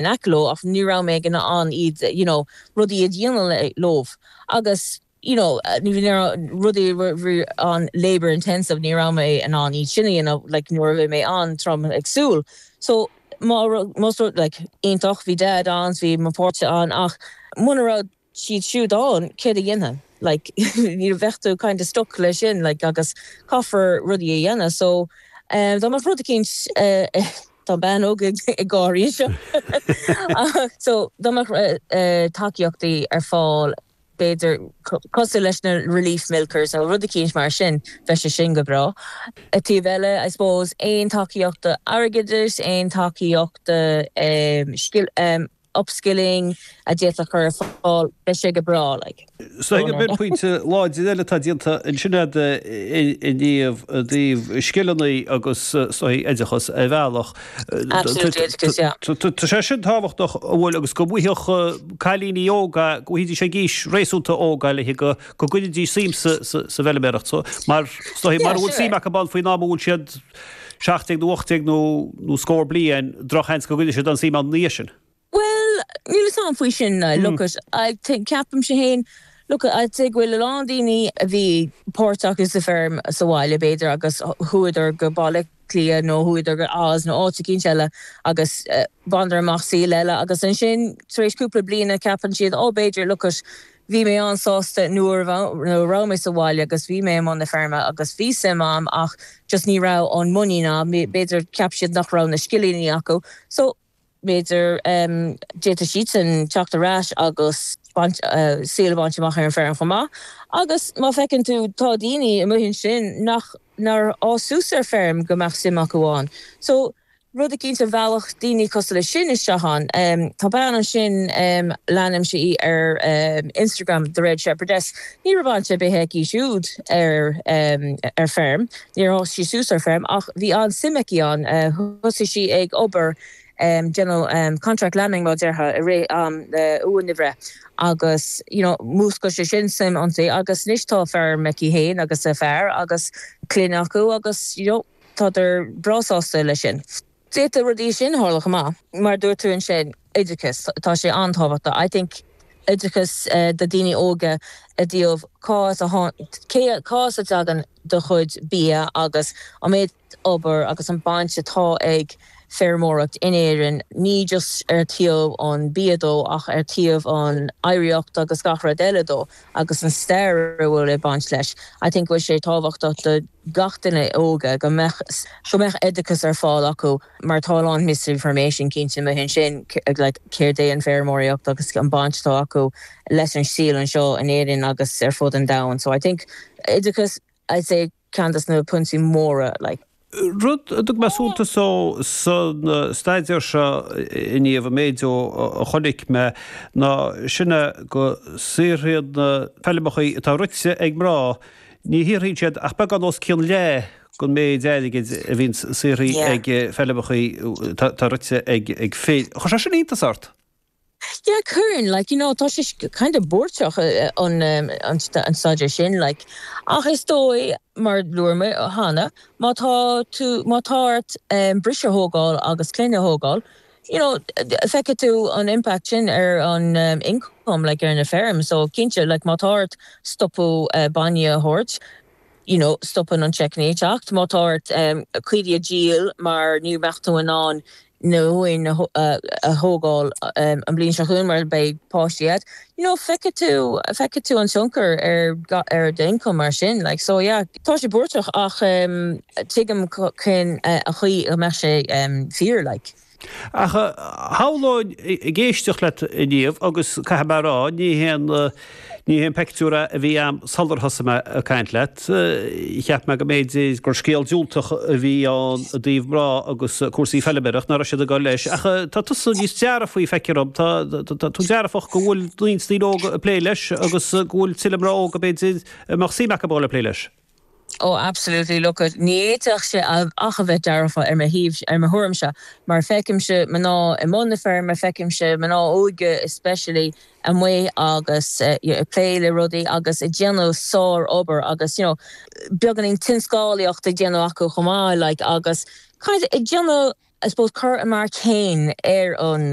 in aice leo ach ní raibh mé in ann iad you know rudaí a dhéanamh leof agus you know ní raibh rudaí a bhí an-labour intensive ní raibh mé in ann iad sin a dhéanamh like nuair a bhí mé an-trom ag súil so má rud más rud like iontach bhí dad ann so bhí mo pháirtí ann ach muna raibh siad siúd ann, céard a dhéanfainn, like you know bheadh tú kind of stuck leis sin like agus caithfear rudaí a dhéanamh so dá mbeadh rud eicínt eh tá bean óg ag gáirí anseo so dá mbeadh eh tacaíochtaí ar fáil b'fhéidir cosúil leis na relief milkers nó rud eicínt mar sin bheadh sé sin go breá. Ar an taobh eile I suppose aon tacaíochtaí airgeadais, aon tacaíochtaí eh scil, em. upskilling, a d'fhéadfadh a chur ar fáil, beidh sé go breá, like. Sílim gur pointe láidir eile atá déanta ansin agat a Niamh i dtaobh scileanna agus is dóigh oideachas ar bhealach, Absolutely, oideachas, yeah. tá sé sin tábhachtach a bhfuil agus go bhfaigheadh cailíní óga, go bhfaighidís é ag aois réasúnta óga le go go gcoinneoidís suim sa bhfeiliméaracht so mar so mara bhfuil suim acu ann faoin am a bhfuil siad seacht déag nó ocht déag nó scór bliain, drochsheans go gcoinneodh siad an suim ann ina dhiaidh sin. Bhuel, níl 'fhios a'm faoi sin now, look it, I think, ceapaimse fhéin, look it, I'd say go bhfuil a lán daoine a bhí páirteach i, sa pheirm, sa bhaile b'fhéidir agus chuadar go Baile Átha Cliath nó chuadar go Oz nó áit eicínt eile agus bhaineadar amach saol eile agus ansin tar éis cúpla bliana ceapann siad, oh b'fhéidir, look it, Bhí mé an-sásta nuair a bhí mé sa bhaile agus bhí mé i mbun na feirme agus bhí suim a'm ach just ní raibh an muinín a'm, b'fhéidir cheap siad nach raibh na scileannaí acu so b'fhéidir d'fhéadfadh siadsan teacht ar ais agus baint, saol a bhaint amach ar an feirm chomh maith agus má feiceann tú tá daoiní amuigh ansin nach, nár fhás suas ar feirm go mbeadh suim acu ann so rud eicínt a mheallfadh daoine cosúil leis sin isteach ann. Tá bean ansin, leanaim sí ar Instagram, The Red Shepherdess, ní raibh baint ar bith aici siúd ar feirm, níor fhás sí suas ar feirm ach bhí an-suim aici ann, thosaigh sí ag obair, déanamh contract lambing mar a déarfá, i rith am na uain a bhreith agus you know mhúscail sé sin suim ionti agus anois tá feirm aici fhéin agus a fear agus clann acu agus you know. Tádar breá sásta leis sin. D'fhéadfadh rudaí mar sin tarlú chomh maith. Mar a dúirt tú ansin, oideachas, tá sé an-tábhachtach, I think, oideachas do daoine óga i dtaobh cá as a cé, cá as a dtagann do chuid bia agus an méid obair agus an baint atá ag feirmeoireacht in Éirinn, ní just ar thaobh an bia dhó ach ar thaobh an oidhreacht agus gach rud eile dhó. agus an stair a bhfuil ag baint leis. I think go bhfuil sé tábhachtach do gach duine óga go mbeadh, go mbeadh oideachas ar fáil acu mar tá a lán misinformation cinnte amuigh ansin, like céard é an feirmeoireacht agus an baint atá acu leis an saol anseo in Éirinn agus ar fud an domhain. So I think oideachas, I'd say. ceann de na pointí móra like. Rud a dtug mé suntas dó sa staidéar seo inniu, an méid a chonaic mé ná sin go saothraíonn na feilmeacha atá rite ag mná, ní shaothraíonn siad ach beagán os cionn leath den mhéid airgid a bhíonn saothraithe ag feilmeacha atá rite ag fir. Chuir sé sin iontas ort? Yeah, cuireann. Like, you know, tá sé kind of buairteach an an staidéar sin, like, ach is dóigh, mar a dúirt mé cheana, má tá tú, má tá ort briseadh a thógáil agus clainne a thógáil, you know, feicfidh tú an impact sin ar an income, like, ar na feirm, so cinnte, like, má tá ort stopadh bainne a thabhairt, you know stopann an tseic ag teacht má tá ort caoirigh a dhíol mar ní bheadh tú in ann na huain a thógáil an bhliain seo chugainn mar beidh páistí agat you know feicfidh tú feicfidh tú an tionchar ar ar d'ioncam mar sin like so yeah tá sé buairteach ach tuigim cén chaoi go mbeadh sé fíor like. Ach shamhlóinn, ag éisteacht leat inniu, agus caithfidh mé a rá, ní hé an, ní hé an peictiúr a a bhí a'm sular thosaigh mé ag caint leat, cheap mé go mb'fhéidir gur scéal diúltach a bhí ann i dtaobh mná agus cúrsaí feilméarachta, nach raibh siad ag dul leis, ach tá tusa níos dearfaí feictear dhom, tá, tá tú dearfach go bhfuil roinnt daoine óga ag plé leis agus go bhfuil tuilleadh mná óga, b'fhéidir, a mbeadh suim acu a dhul ag plé leis. Ó, absolutely, look it, ní fhéadfadh sé ach a bheith dearfach ar mo thaobh, ar mo thuairimse, mar feicimse mná i mbun na feirme, feicimse mná óige especially amuigh agus you know ag plé le rudaí agus ag déanamh sár-obair agus you know beagáinín tionscálaíocht ag déanamh acu chomh maith like agus kind of ag déanamh I suppose cur a marc féin ar an